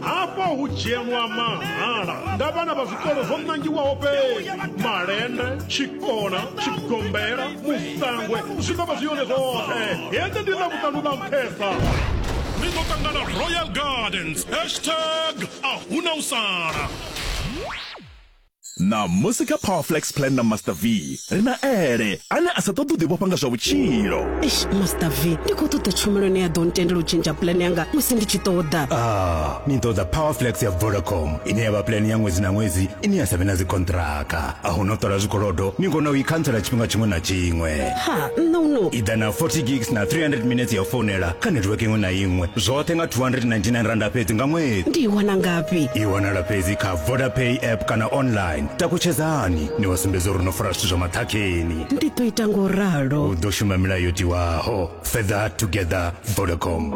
hafha hu dzhielwa mahala nga vhana vha zwikolo zwo nangiwaho fhedzi malende tshikona tshigombela musangwe zwi ḓo vha zwi yone zwoṱhe hende ndi na vhuṱanu ḽa nṱhesa ni ḓo ṱangana royal gardens hashtag a huna u sala Ṋamusi kha Power Flex Plan na Master V, ri na Ele, ane a sa ṱoḓi u ḓivhofha nga zwa vhutshilo. Eish, Master V, ndi khou ṱoḓa tshumelo ine ya ḓo ntendela u tshentsha plan yanga musi ndi tshi ṱoḓa. Ah, ni ṱoḓa Power Flex ya Vodacom, ine ya vha plan ya ṅwedzi na ṅwedzi ine ya sa vhe na dzikhonṱhiraka. A hu na u ṱola zwikolodo, ni kona u i khantsela tshifhinga tshiṅwe na tshiṅwe. Ha, no no. I ḓa na 40 gigs na 300 minetse ya u founela kha netiweke iṅwe na iṅwe, zwoṱhe nga R299 fhedzi nga ṅwedzi. Ndi i wana ngafhi? I wanala fhedzi kha vodapay app kana online takutshedzani ni wa sumbedza uri no fara zwithu zwa maṱhakheni ndi ḓo ita ngo ralo u ḓo shuma milayo yo tiwaho further together vodacom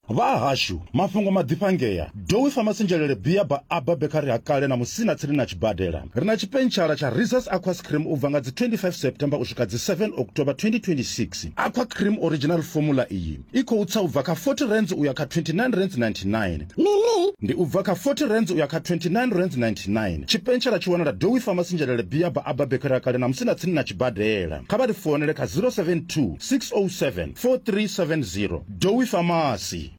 vha hashu mafhungo maḓifhangea dowi famasinzhelele bia ba aba bekari ha kale na musina tsini na tshibadela ri na tshipentshara tsha reses aqua scream u bva nga dzi 25 september u swika dzi 7 october 2026 aqua cream original formula iyi i khou tsa u bva kha 40 rands u ya kha 29 rands 99 mini ndi u bva kha 40 rands u ya kha 29 rands 99 tshipentshela tshi wanala dowi famasi nzhelele biyaba aba bekera kale na musi na tsini na tshibadela kha vha ri founele kha 072 607 4370 dowi famasi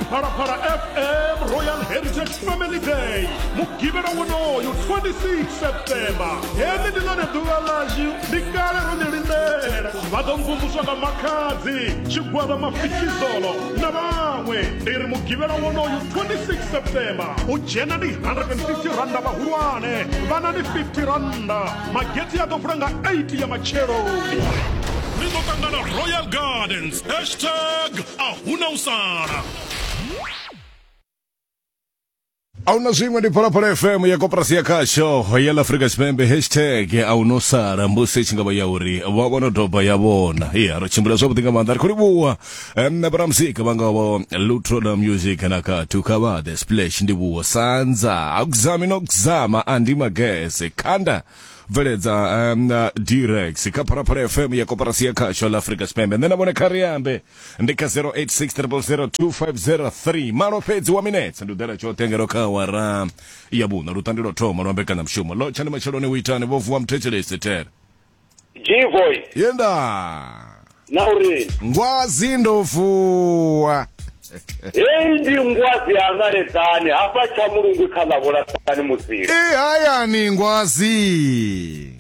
phalaphala fm royal heritage family day mugivhela wonoyo 26 september heli ndi lone ḓuvha ḽashu ndi kale ro ni lindela vha ḓo mvumvuswa nga makhadzi tshigwada mafikizolo na vhaṅwe ndi ri mugivhela wonoyu 26 september u dzhena ndi 150 randa vhahulwane vhana ndi 50 randa magethi a ḓo vula nga 8 ya matsheloni ni ḓo ṱangana royal gardens hashtag a huna u sala ahuna zwiṅwe ndi phalaphala fm ya koporasi ya khasho ya la afrika tshipembe hashtag ahuna u sala mbusi i tshi nga vha ya uri vha vhono doba ya vhona ya ro tshimbila zwavhuḓi nga maanḓa ri khou livhuwa em, na vhoramuzika vha ngavho lutro la music na kathu kha vha the splash ndi vhuwo sanza akuzami no kuzama andi magese khanda bveledza um, na direx kha phalaphala fm ya koporasi ya khasho la afrika tshipembe nṋe na vhone kha ri ambe ndi kha 0860002503 malo fhedzi wa minetse ndi u ḓela tshoṱhe ngeno kha awara ya vhuṋa lutandi lwo thoma lwa mbekanyamushumo lo tshani matsheloni u itani vho vuwa muthetshelesi tere G-Boy, yenda na uri ngwazi ndo vuwa heyi ndi ngwazi ya ṋaledzani hafha tsha mulungu kha ḽa vhulasani musili i hayani ngwazi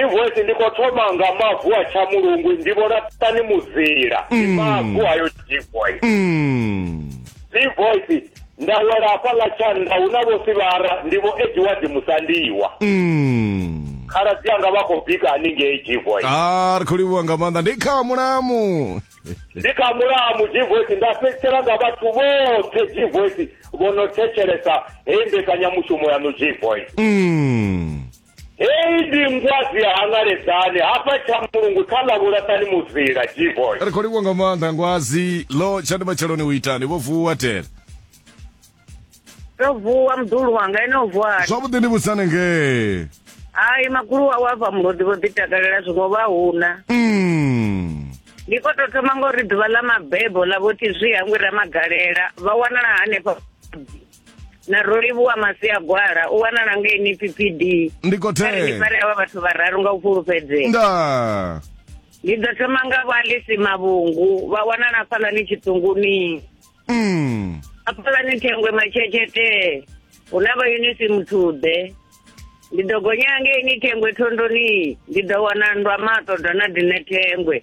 Invoice ndi khou thoma nga mavu a tshamulungu ndi vholaṱani mudzila ndi mm. mavu ayo invoice mm. invoice nda wela hafha ḽa tshanḓa hu na vho sivara ndi vho edward musandiwa mm. khaladzi anga vha khou bika haningei jivoice a ah, ri khou livhuwa nga maanḓa ndi kha mulamu ndi kha mulamu jivoice nda fhedzisela nga vhathu vhoṱhe jivoice vho no thetshelesa heyi mbekanyamushumo yaṋu jivoice heyi ndi ngwadzi ya hangaledzani hafha tsha mulungu kha ḽa vhulaṱani muzila gboy ri khou livhuwa nga maanḓa ngwazi lo tshani matsheloni u itani vho vuwa tele ndo vuwa muḓulu wanga ene o vuwani zwavhuḓi ndi vhusane ngee hai magulu wawe a bva mulodi vho ḓi takalela zwiṅwe vha huna Mm. ndi khou tou thoma ngauri ḓuvha ḽa mabebo ḽa vho tizwi hangwi ramagalela vha wanala hanefha na rolivhuwa masia gwala u wanala ngei ni ppd ndi kothee fare avha vhathu vhararu nga u fhulufhedzea nda ndi ḓo thoma nga vho alisi mavhungu vha wanala fhalani tshiṱunguni mm. afhalani thengwe matshetshethe hu na vha unisi muthuḓe ndi ḓo gonya ngei ni thengwe thondoni ndi ḓo wana nndwa maṱo dona dine thengwe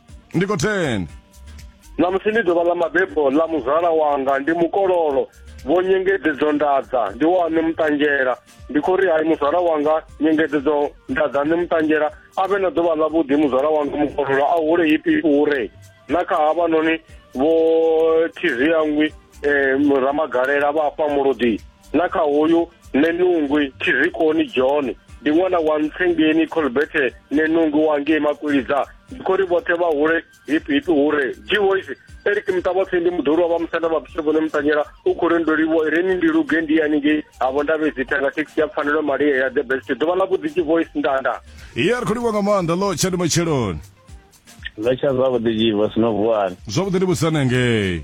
ndi khou thenda ṋamusi ndi ḓuvha ḽa mabebo ḽa muzala wanga ndi mukololo vho nyengedzedzo ndadza ndi wa ni muṱanzhela ndi khou ri hai muzala wanga nyengedzedzo ndadza ni muṱanzhela a vhe na ḓuvha ḽa vhuḓi muzala wanga mukololo a hule ipi ure na kha havhanoni vho thiziyangwi um eh, ramagalela vha fha muludi na kha hoyu nenungwi thizikoni john ndi ṅwana wa ntsengeni colberte nenungwi wangei makwilidza khori vhoṱhe vha hule hipi hipi hure jivoice eric muṱavhapfi ndi muḓulu wa vha musanda vha bishopone mutanyela u khou rendoliwo reni ndi luge ndi yaningei havo ndavhe dzithanga thekhisi ya pfanelo maria ya the best ḓuvha ḽa vhuḓi jivoice ndanda iye ri khou livha nga maanḓa lo tshani matsheloni ḽa tsha zwavhuḓi jivo sino vuwani zwavhuḓi ndi vhusanengei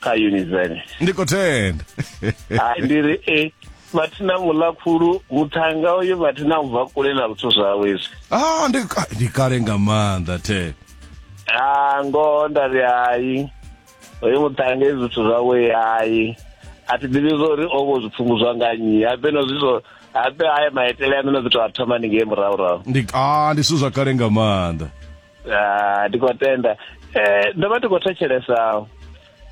kha unizeni ndi khou tenda hai ndi ri e vhathu na muḽa khulu muthanga uyo vhathu na ubva kule na zwithu zwawe izwi ah ndi ah, ndi kale nga maanḓa the ah ngoho nda ri hai hoyo muthanga izwi zwithu zwawe hai a thi ḓivhi zwo uri o vho zwi pfunguzwa nga nnyi habe no zwi zwo habe haya maitele a no no ḓi tou a thoma ni ngei murahurahu ndi ah ndi zwithu zwa kale nga maanḓa ah, ndi khou tenda um ndo vha ndi khou thetshelesa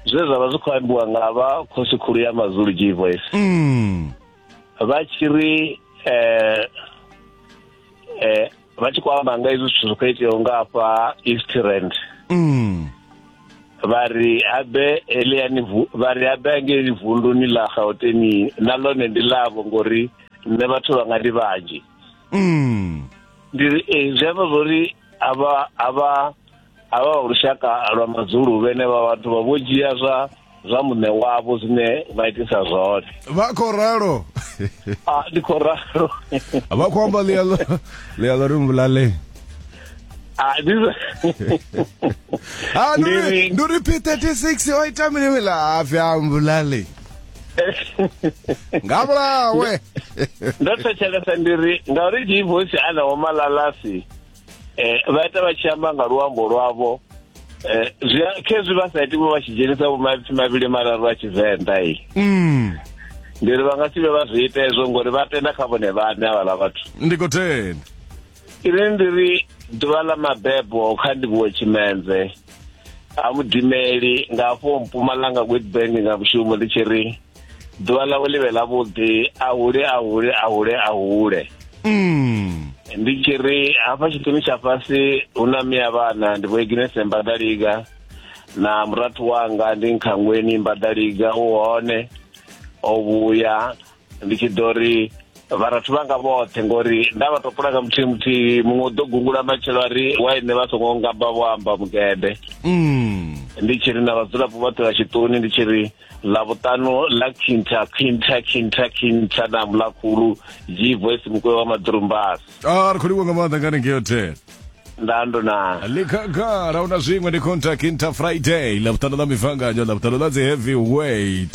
zwe zwa vha zwi khou ambiwa nga vha khosi khulu ya mazulu g voice mm. vha tshi ri um um vha tshi khou amba nga izwi zwithu zwi khou iteaho nga afha east rand mm. vha ri habe eliani vha ri habe angeli vunduni ḽa gauteni na ḽone ndi ḽavho ngori nṋe vhathu vha nga ndi vhanzhi mm. ndi eh, zwi amba zwori avha avha avha wa lushaka lwa madzulu vhene vha vhathu vha vho dzhia zwa zwa muṋe wavho zwine vha itisa zwone vha khou ralo a ah, ndi khou ralo vha khou amba ḽialo ḽialo ri mbulale ah, ah, ndi ri p 36 o ita mini wela a vya mbulale nga vhulawe ndo thetshelesa ndi ri ngauri dii voice ana wo malalasi eh vha ita vha tshi amba nga luambo lwavho eh zwi a- khezwi vha sa iti vho vha tshi dzhenisa vho maipfi mavhili mararu a tshivenḓa i mm. ndi ri vha nga si vhe vha zwi ita hezwo ngori vha tenda kha vhone vhaṋe havhala vhathu ndi khou tenda ine ndi ri ḓuvha ḽa mabebo kha ndivhuwe tshimenze ha mudimeli nga afho mpumalanga witbank nga mushumo ndi tshi ri ḓuvha ḽawe ḽi vhe ḽavhuḓi a hule a hule a hule a hule mm. ndi tshi ri hafha tshiṱuni tsha fhasi hu na miya vhana ndi vhoiginese mbadaliga na murathu wanga ndi nkhangweni mbadaliga u hone o vhuya ndi tshi ḓo ri vharathu vhanga vhoṱhe ngori nda vha topula nga muthihi muthihi muṅwe u ḓo gungula matshelo a ri waine vha songo ngamba vho amba mugede mm. ndi tshi ri na vhadzulapo vhoṱhe vha tshiṱuni ndi tshi ri ḽavhuṱanu ḽa khintha khintha khintha khintha na mulakhulu g voice mukwe wa maḓurumbasi a ah, ri khou livho nga maanḓa ngani ngeyo ten ndando na likhagala una zwiṅwe ndi khintha khintha friday ḽavhuṱanu ḽa mivanganyo ḽavhuṱanu ḽa dzi heavy weight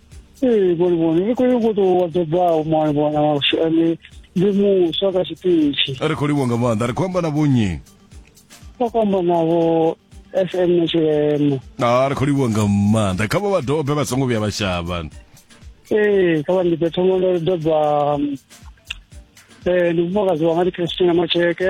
ee vhoni vhoni ri khou yo ngo tou wadzebaho mwana mwana washu ane ndi muswa kha tshiṱitshi ri khou livho nga maanḓa ri khou amba na vhonyi sa khou amba navho fm na tshilema a ah, ri khou livho nga maanḓa kha vha vha dobe vha songo vhuya vha shavha ee kha vha ndipe thoma ndo doba um, eh, ndi mufumakadzi wanga ndi christina macheke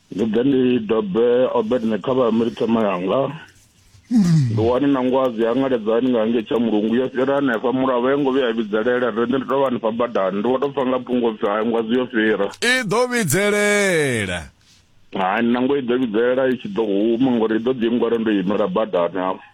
ndi ḓe ndi dobe obedne kha vha milithema yanga ndi wani na ngwazi ya ngaledzani nga nge tsha mulungu yo fhira hanefha mulavo yo ngo vhuya ya vhidzelela re ndi tou vha hanefha badani ndi wa tou pfa nga phungo pfi hai ngwazi yo fhira i ḓo vhidzelela hai nango i ḓo vhidzelela i tshi ḓo huma ngori i ḓo ḓi ngwara ndo imela badani hafho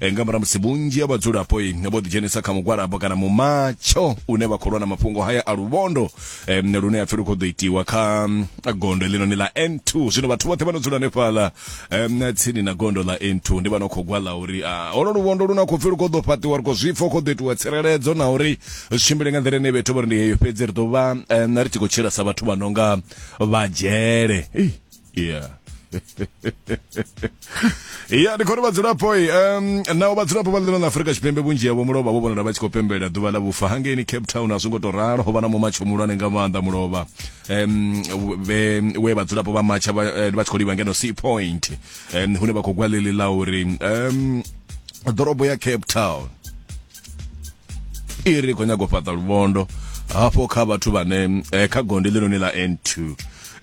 Eh, nga murahu musi vhunzhi ha vhadzulapo eh, vho ḓidzhenisa kha mugwalabo kana mumatsho une vha khou lwa na mafhungo haya a luvhondo eh, lune a pfi lu khou ḓo itiwa kha mm, gondo heḽinoni ḽa n2 zwino vhathu vhoṱhe vha no dzula hanefhaḽa em, tsini na gondo ḽa n2 ndi vha no khou gwala uri ah, holo luvhondo lu na khou pfi lu khou ḓo fhaṱiwa ri khou zwipfa hu khou ḓo itiwa tsireledzo na uri zwi tshimbile nga nḓila ine vhethu vha ri ndi heyo fhedzi ri ḓo vha em, ri tshi khou tshila sa vhathu vha no nga vha dzhele Ei, yeah ya ndi khori vhadzulapo um naho vhadzulapo vha ḽino ḽa afurika tshipembe vhunzhi havho mulovha vho vhonala vha tshi khou pembelela ḓuvha ḽa vhufa hangeini cape town a zwi ngo tou ralo ho vha na mumatsho muhulwane nga maanḓa mulovha um we vhadzulapo vha matsha vha eh, tshi khou livha ngeno sea point um hune vha khou gwa ḽili ḽa uri um ḓorobo ya cape town i ri khou nyaga u fhaṱa luvhondo hafho kha vhathu vhane eh, kha gondi ḽinoni ḽa n2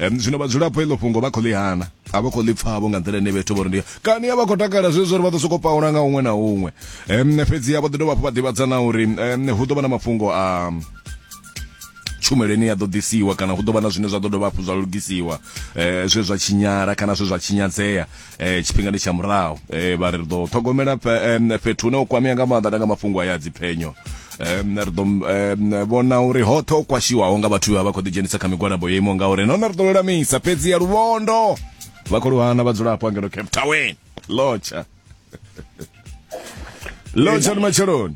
um, zwino vhadzulapo iḽo fhungo vha khou ḽi hana a vha khou ḽi pfavho nga nḓila ine vhethu vho ri ndi kani a vha khou takala zwezwo uri vha ḓo sokou paula nga huṅwe na huṅwe um, fhedzi a vho ḓi dovha hafhu vha ḓivhadza na uri um, hu ḓo vha na mafhungo a um, tshumelo ine ya ḓo ḓisiwa kana hu ḓo vha na zwine zwa ḓo dovha hafhu zwa lugisiwa eh, zwe zwa tshinyala kana zwe zwa tshinyadzea eh tshifhinga ndi tsha murahu eh vha ri ḓo ṱhogomela fhethu hune u kwamea nga maanḓa nga mafhungo aya dziphenyo um ri ḓo vhona uri hoṱhe o kwashiwaho nga vhathu vha vha khou ḓidzhenisa kha migwalabo yo imaho ngauri nahone ri ḓo lulamisa fhedzi ya luvhondo vha khou luhana vhadzulapo angeno cape town lotsha lotsha ni matsheloni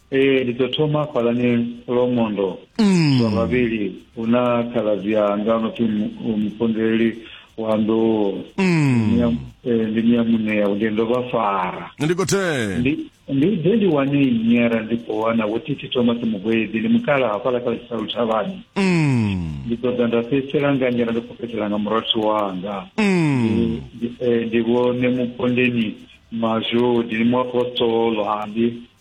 Ee, ndi ḓo thoma fhalani Lomondo mm. zwa vhavhili hu na khaladzi anga no pfi mupondeleli wa nḓou mm. eh, ndi miya muṋea ndi ndo vha fara ndi khothe ndi ḓe ndi wane nyera ndi khou wana wo titi thoma ti mugwedi ndi mukala hafhala kha tshisa luthavhani mm. ndi ṱoḓa nda fhedzisela nga nyera ndi khou fhedzisela nga murathu wanga mm. eh, ndi vhone mupondeni mazhodi ni muapostolo handi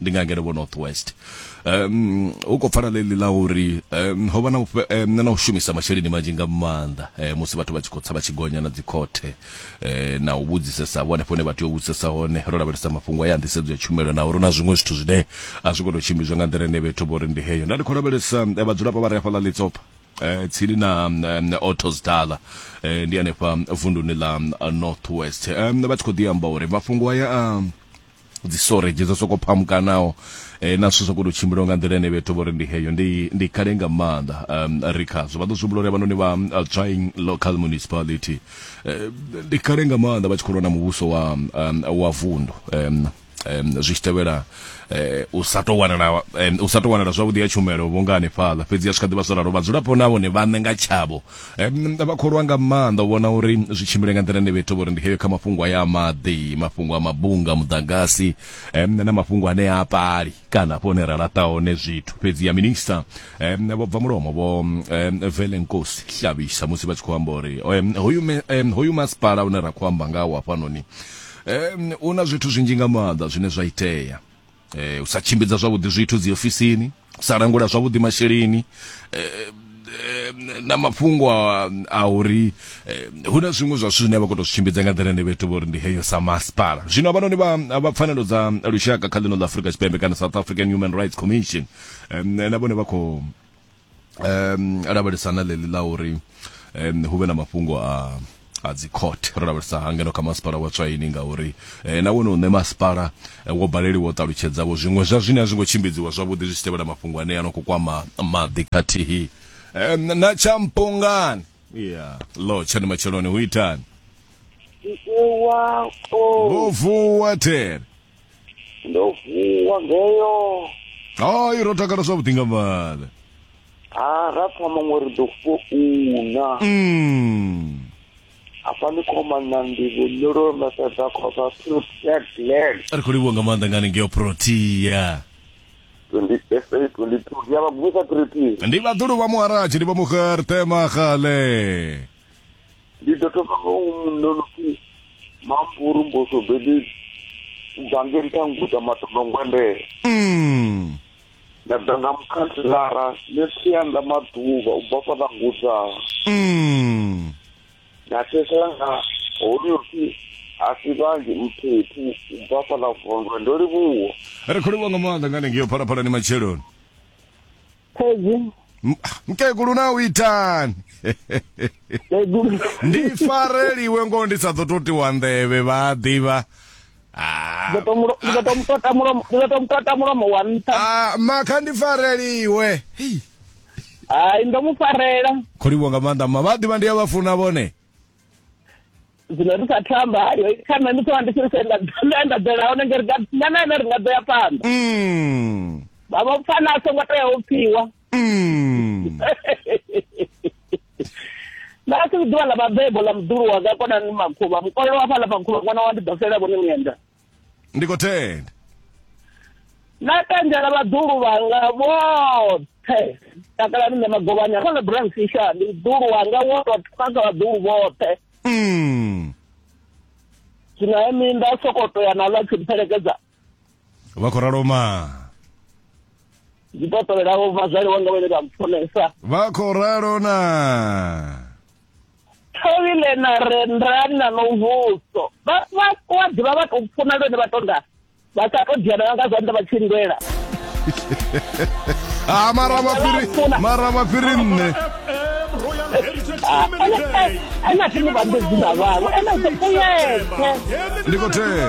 ndi nga ngeno vho north west um u khou pfala ḽeḽi ḽa uri um ho vha na na u shumisa masheleni manzhi nga maanḓa um musi vhathu vha tshi khou tsa vha tshi gonya na dzikhothe um na u vhudzisesa vho hanefho hune vha tea u vhudzisesa hone ro lavhelesa mafhungo ya nḓisedzo ya tshumelo na uri na zwiṅwe zwithu zwine a zwi khou tou tshimbidzwa nga nḓila ine vhethu vho ri ndi heyo nda ndi khou lavhelesa vhadzulapo vha re hafhaḽa ḽitsopha eh tsini na Autos Dala eh ndi hanefha vunduni ḽa North West eh vha tshi khou ḓi amba uri mafhungo aya a dzi storage dzo soko phamukanaho eh, na zwithu zwa koto tshimbila nga nḓila ene vhethu vhori ndi heyo ndi ndi kale nga maanḓa um, ri khazwo vha ḓo zwi humbula uri vhanoni vha uh, trying local municipality eh, ndi kale nga maanḓa vha tshi khou lwa na muvhuso wa um, wa vundu um, um, zwi tshi tevhela eh, u sa tou wanala um, u sa tou wanala zwavhuḓi ya tshumelo vhunga hanefhaḽa fhedzi ya swika ḓivha zwo ralo vhadzulapo na vhone vhaṋe nga tshavho vha khou lwa nga maanḓa u vhona uri zwi tshimbile nga nḓila ine vha ita uri ndi heyo kha mafhungo aya a maḓi mafhungo a mabunga muḓagasi na mafhungo ane a pali kana hafho hune ra laṱa hone zwithu fhedzi ya minista vho bva mulomo vho velenkosi hlavhisa musi vha tshi khou amba uri hoyu hoyu masipala une ra khou amba ngawo hafhanoni u na zwithu zwinzhi nga maanḓa zwine zwa itea eh, u sa tshimbidza zwavhuḓi zwithu dzi ofisini u sa langula zwavhuḓi masheleni eh, na mafhungo a, a uri eh, hu na zwiṅwe zwa zwithu zwine vha khou tou zwi tshimbidza nga nḓila ine vha ita uri ndi heyo sa masipala zwino avhanoni vha vha pfanelo dza lushaka kha ḽino ḽa afurika tshipembe kana south african human rights commission eh, na vhone vha khou um lavhelesa na ḽeḽi ḽa uri um hu vhe na mafhungo a a dzi court ro lavhelesa hangeno kha masipala wa tswaini ngauri eh, na wone uṋe masipala eh, wo baleliwa u ṱalutshedzavho zwiṅwe zwa zwine a zwi ngo tshimbidziwa zwavhuḓi zwi tshi tevhela mafhungo ane a no khou kwama maḓi khathihi eh, na tshampongani ya lo tshani matsheloni hu itani wa o vho vuwa there ndo vuwa ngeyo hayi ro takala zwavhuḓi nga maanḓa ha ra pfa maṅwe ri ḓo founa mm. hafha ni khomana ndivho nyolo mesedza khosa protea glen ri khou livhuwa nga maanḓa ngani ngeyo protea 28 22 ndi ya vha gumisa protea ndi vhaḓulu vha muharaji ndi vha mugertema gale Ndi ḓo thoma nga u mu nonopfi mampuru mbuso bedi dzangeni kha nguda matombo ngwendele mm. nda ḓa nga mukhanthilara ne tsianda maḓuvha u bva fhaḽa nguda mm. na thesela nga honopfi a si vhanzhi mphephu u bva fhaḽa vondwe ndo livhuwa ri khou livhuwa nga maanḓa nga hanengei yo phalaphalani matsheloni Khedzi. M- mkegulu na u itani Khedzi. ndi fareliwe ngoho ndi sa ḓo to tiwa nḓevhe vha a ḓivha Ah, Ndi ḓo to mulo- ndi ḓo to mutota mulomo, ndi ḓo to mutota mulomo wa nṱha. ah, makha ndi fareliwe Hei, Hai, ndo mu farela. kho livhuwa nga maanḓa mma vha a ḓivha ndi a vha funa vhone zwino ri sa thamba hayo kana ni ṱoa ndi tshi ri nda nda ḓela hone ngeri nga na ene ri nga ḓo ya phanḓa mm. vha vha pfana a songo tea u pfiwa mm. na a si ḓuvha ḽa vhabebo ḽa muḓulu wanga konani makhuvha mukolelo wa fhaḽa makhuvha ṅwana wa ndi ḓo fela vhone mienda ndi khou tenda na tendela vhaḓulu vhanga vhoṱhe takalani nṋe magovhani a khona brand fisha ndi ḓulu wanga woṱhe kha kha vhaḓulu vhoṱhe mm. zwino he minda sokoto ya nalwa tshi mpfelekedza vha khou ralo ma ndi to tovhelaho vhazwali wanga vhane vha mpfunesa vha khou ralo na thovhile na rendrani na nomvuso vha wa ḓivha vha tou funa lwene vha tonda vha sa tou diana nga zwanḓa vha tshi lwela a ah, mara mafiri mara mafiri nne ena thini vha ndo dzina vhavho ena ḓo kuyeke ndi khou thela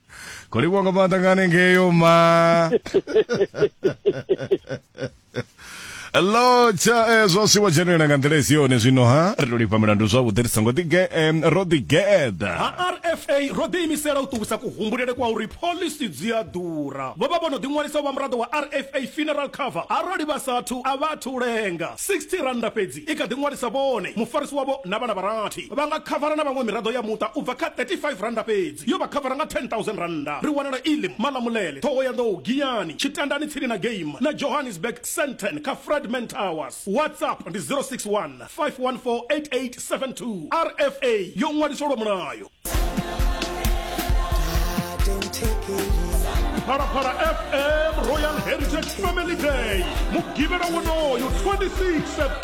Kodi wakapata ngane ngeyo ma. lotsha eh, zwo siwa dzhenelela nga nḓila isi yone zwino ha ri to lifha milandu zwavhuḓi ri songo ḓi ge- em, ro ḓi geḓa ha rfa ro ḓiimisela u ṱuwisa kuhumbulele kwa uri pholisi dzi a ḓura vho vha vho no ḓiṅwalisa u vha muraḓo wa rfa funeral cover arali vha sathu a vha athu lenga 60 rannda fhedzi i kha ḓi ṅwalisa vhone, mufarisi wavho na vhana vha rathi. Vha nga khavara na vhaṅwe miraḓo ya muṱa u bva kha R35 fhedzi. Yo vha khavara nga R10,000. Ri wanala Elim, Malamulele, Thohoyandou, Giyani, Tshitandani tsini na Game na Johannesburg, Sandton kha Fredman Towers. WhatsApp ndi 061 514 8872. RFA yo ṅwaliswa lwa mulayo. Phalaphala FM Royal Heritage Family Day, Mugivhela wonoyu 26 September.